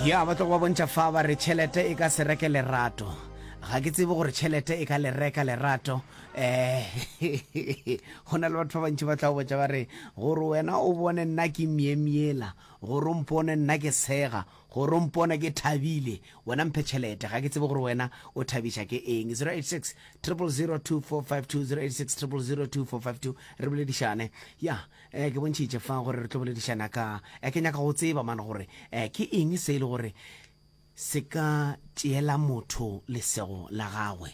ya ba tlogo ba bontšha fa ba re tšhelete e ka se reke lerato ga ke tsebe gore tšhelete e ka le reka lerato um go na le batho ba bantši ba tla botša ba re gore wena o bone nna ke myemyela gore o mpone nna ke sega gore o mpone ke thabile wena mphe tšhelete ga ke tsebe gore wena o thabiša ke eng 086 002452 086 002452 re boledišane ya Eh, ke bontšhitše fa gore re tlo boledišana ka eh, ke nyaka go tseba mane gore eh, ke eng se e le gore se ka tšeela motho lesego la gagwe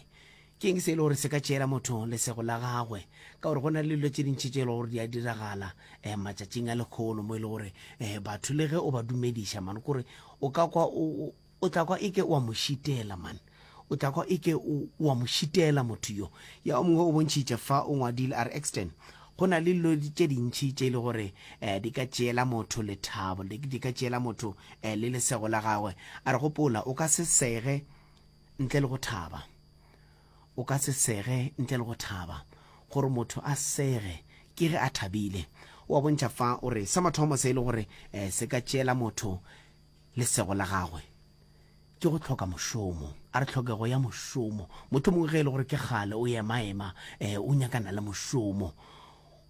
ke eng se e le gore se ka tšeela motho lesego la gagwe ka gore go na le dilo tše dintšhi tše e le gore di a diragala um matšatšing a lekgono mo e le gore um batho le ge o ba dumediša mane kore o ka kwa O tla kwa e ke o a mo šitela, man. O tla kwa e ke o, o a mo šitela motho yo. Ya o mongwe o bontšhitše fa, o ngwadile, a re, Exton, go na le dilo tše dintši tše e le gore eh, di ka tšeela motho lethabo, di, di ka tšeela motho eh, le lesego la gagwe. A re, Gopola, o ka se sege ntle le go thaba. O ka se sege ntle le go thaba. Gore motho a sege, ke ge a thabile. O a bontšha fa, o re, sa mathomo se e le gore eh, se ka tšeela motho Lesego la gagwe ke go hloka mošomo. A re tlhokego ya mošomo. Mothomong ge e le gore ke kgale o emaema, eh, o nyakana le mošomo.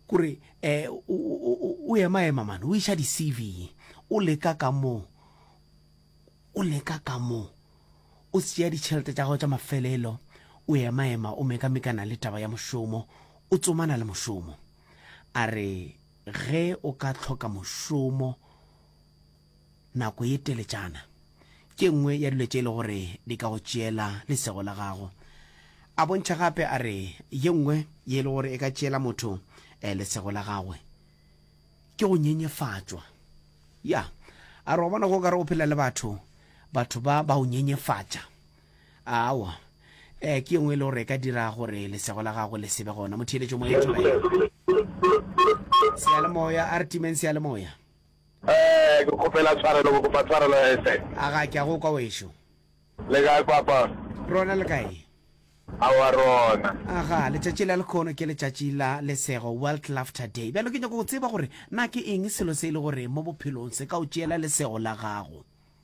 Kore, eh, o, o, o, o emaema mane, o iša di-CV. O leka ka mo, o leka ka mo. O tšea ditšhelete tša gago tša mafelelo, o emaema, o mekamekana le taba ya mošomo, o tsomana le mošomo. A re ge o ka hloka mošomo, nako ye teletšana. Ke nngwe ya dilo tše e le gore di ka go tšeela lesego la gago. A bontšha gape a re ye nngwe ye e le gore e ka tšeela motho lesego la gagwe ke go nyenyefatšwa. Ya, a re wa bona ge o ka re o phela le batho, batho ba ba o nyenyefatša, aowa, ee, ke ye nngwe e le gore e ka dira gore lesego la gago le se be gona. Motheeletšo moyeng, tšoba yena seyalemoya, a re timeng seyalemoya. Ee, ke kgopela tshwarelo, ke kopa tshwarelo ya ese. A ga ke a go kwa wešo. Le kae papa? Rona le kae? Aowa rona. Aga, letšatši la lekhono ke letšatši la lesego, World Laughter Day. Bjalo ke nyaka go tseba gore na ke eng selo se e le gore mo bophelong se ka o tšeela lesego la gago.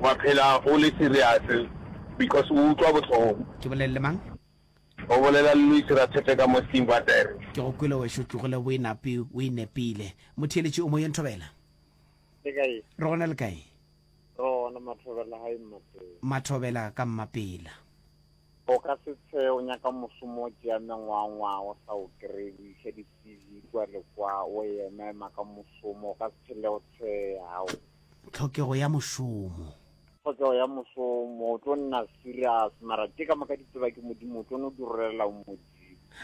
Wa phela o le serious because o utlwa bohloko. Ke bolelele mang? O bolela le Luis Ratshepe ka mo Steam Batere. Ke go kwele wešo tlogele boinapi o inepile. Motheeletši o moyeng Thobela. Le kae? Re gona le kae? Re gona Mathobela hai Mmapela. Mathobela ka Mmapela. O ka se tshe o nyaka mosomo o tšea mengwangwa o sa o kry o iša di CV kwa le kwa o ema ema ka mosomo o ka se phele o tsheya hao. Tlhokego ya mošomo. Tlhokego ya mošomo, o tlo nna serious, mara tše ka moka di tseba ke Modimo, o tlo no di rolelela o Modimo.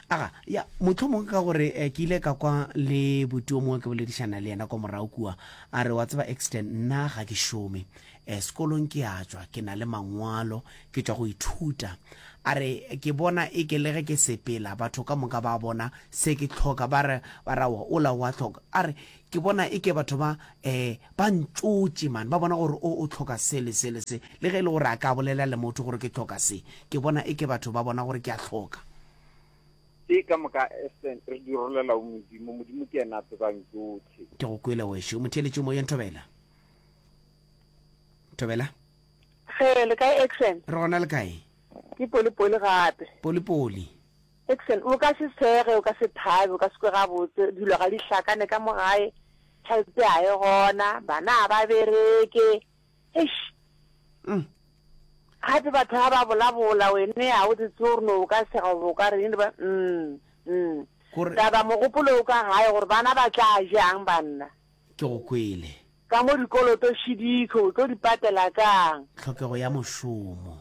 Aga, ya, mohlomongwe ka gore eh, ke ile ka kwa le buti o mongwe ke boledišana le yena kwa morago kua, a re, wa tseba Exton, nna ga ke šome, eh, sekolong ke a tšwa, ke na le mangwalo, ke tšwa go ithuta. A re, ke bona e ke le ge ke sepela, batho ka moka ba bona se ke hloka, ba re, ba re, aowa, ola o a hloka. A re, Ke bona eke batho ba, eh, ba ntšotše, man. Ba bona gore o, o hloka se le se le se. Le ge e le gore a ka bolela le motho gore ke hloka se, ke bona eke batho ba bona gore ke a hloka. Ke ka moka, Esther, re di rolela go Modimo. Modimo ke yena a tsebang tšohle. Ke go kwele, wešu. O mo theeletše Moyeng, Thobela. Thobela? Ge, le kae, Exen? Re gona le kae? Ke Polipoli gape. Polipoli. Excellent. O ka se swege, o ka se thabe, o ka se kwe gabotse, dilo ga di hlakane ka mo gae, tšhelete ga e gona, bana ga ba bereke. Eish! Gape batho ga ba bolabola, wene ga o di tse gore no o ka sega goba o ka reng, ba mm, mm. Gore- Taba mogopolo o ka gae gore bana ba tla jang banna. Ke go kwele. Ka mo dikoloto šidiko, o tlo di patela kang? Tlhokego ya mošomo.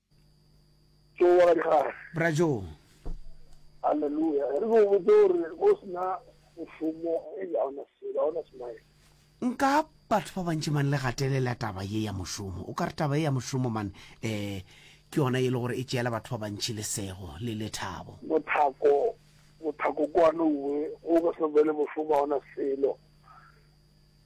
Joe wa Gadikgare. Bra Joe. Hallelujah. Re go botse gore go sena mošomo e ga ona selo, ga ona smile. Nka batho ba bantši man le gatelela taba ye ya mošomo. O ka re taba ye ya mošomo man eh ke yona ye le gore e tšeela batho ba bantši lesego le lethabo. Mothako mothako kwano uwe go go se bele mošomo ga ona selo.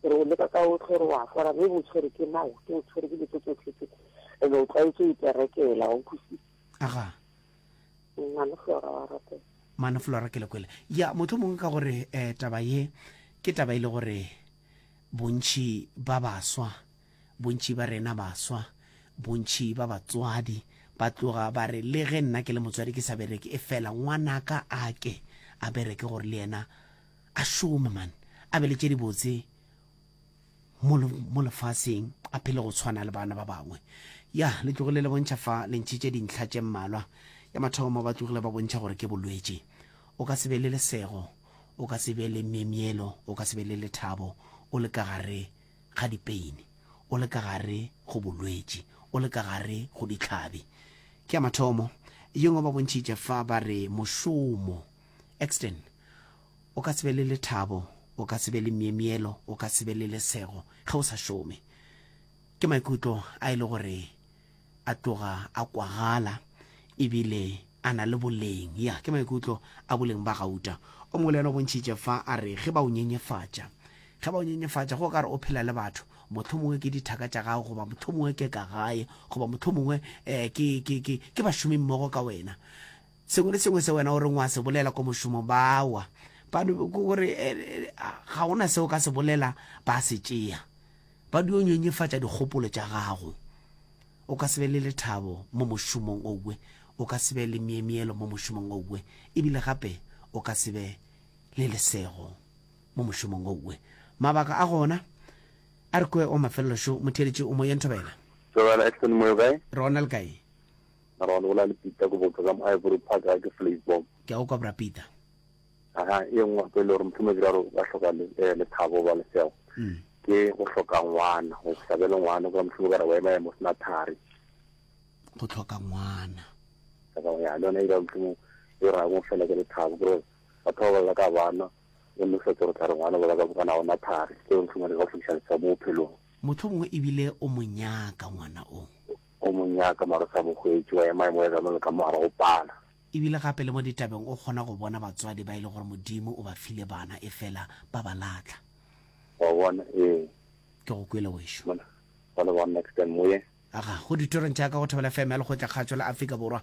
Ke re o leka ka otlhe, o re o a hlora, ge o bo tshwere ke nao, ke go tshwere ke dilo tse tsotlhe tse, and o tlwaetše go iperekela, wa utlwisisa. Aga. Mmane Flora wa rapela. Mmane Flora ke le kwele. Ya, mohlomongwe ka gore eh, taba ye, ke taba e le gore bontši ba baswa, bontši ba rena baswa, bontši ba batswadi, ba tloga ba re, le ge nna ke le motswadi ke sa bereke, efela ngwanaka a ke a bereke gore le yena, A šome, man, a be le tše dibotse mo, mo lefaseng, a phele go tshwana le bana ba bangwe. Ya, le tlogile le bontšha fa le ntšhitše dintlha tše mmalwa. Ya mathomo, ba tlogile ba bontšha gore ke bolwetši. O ka se be le lesego, o ka se be le myemyelo, o ka se be le lethabo, o le ka gare ga dipeini, o le ka gare go bolwetši, o le ka gare go dihlabi. Ke ya mathomo. Ye nngwe ba bontšhitše fa ba re mošomo. exten o ka se be le lethabo o ka se be le miemielo o ka se be le lesego ge o sa šome ke maikutlo a e le gore a tloga a kwagala ebile a na le boleng ya ke maikutlo a boleng ba gauta o mongwe le yena o bontšhitše fa a re ge ba o nyenyefatša ge ba o nyenyefatša go ka re o phela le batho motlho mongwe ke dithaka tša gago goba motlho mongwe ke ka gae goba motlho mongwe um ke bašomimmogo ka wena Sengwe le sengwe se wena o reng o a se bolela ko mošomong ba wa, ba gore ga go na se o ka se bolela ba se tšea, ba dio nyenyefatša dikgopolo tša gago. O ka se be le lethabo mo mošomong owe, o ka se be le myemyelo mo mošomong owe, ebile gape o ka se be le lesego mo mošomong owe. Mabaka a gona a re kwe wa mafelelo šo, motheeletši o mo ye nthobela. Tsogela Edson Moyo kae? Ronald kae? Mara wa no bolela le Peter ko botsa ka mo Ivory Park ga ke Flavor. Ke a go kwa bra Peter. Aha, e nngwe gape le gore mohlomong ke raro ba hloka le eh, le thabo ba lesego. Mm. Ke go hloka ngwana, go sa be le ngwana kwa mohlomong ka re wa ema ya mo sena thari. Go tlhoka ngwana. Ka ba ya le yone e dira mohlomong e ra go fela ke le thabo gore batho ba bolela ka bana o ne fetse gore tla re ngwana bolela ka bokana ona thari. Ke mohlomong le go tlhokisa le mo bophelong. Mohlomongwe ebile o monyaka ngwana o. O mo nyaka, mara o sa mo hwetše, wa ema emo ya ka mo le ka mo gare go pala. E bile gape le mo ditabeng o kgona go bona batswadi ba e le gore Modimo o ba file bana efela ba ba lahla. Wa bona? Ee. Ke go kwele, wešu. Mona, mona, bona, next time, moyeng. Aga, go ditorong tša ka go Thobela FM ya Lekgotlakgatsho la Afrika Borwa,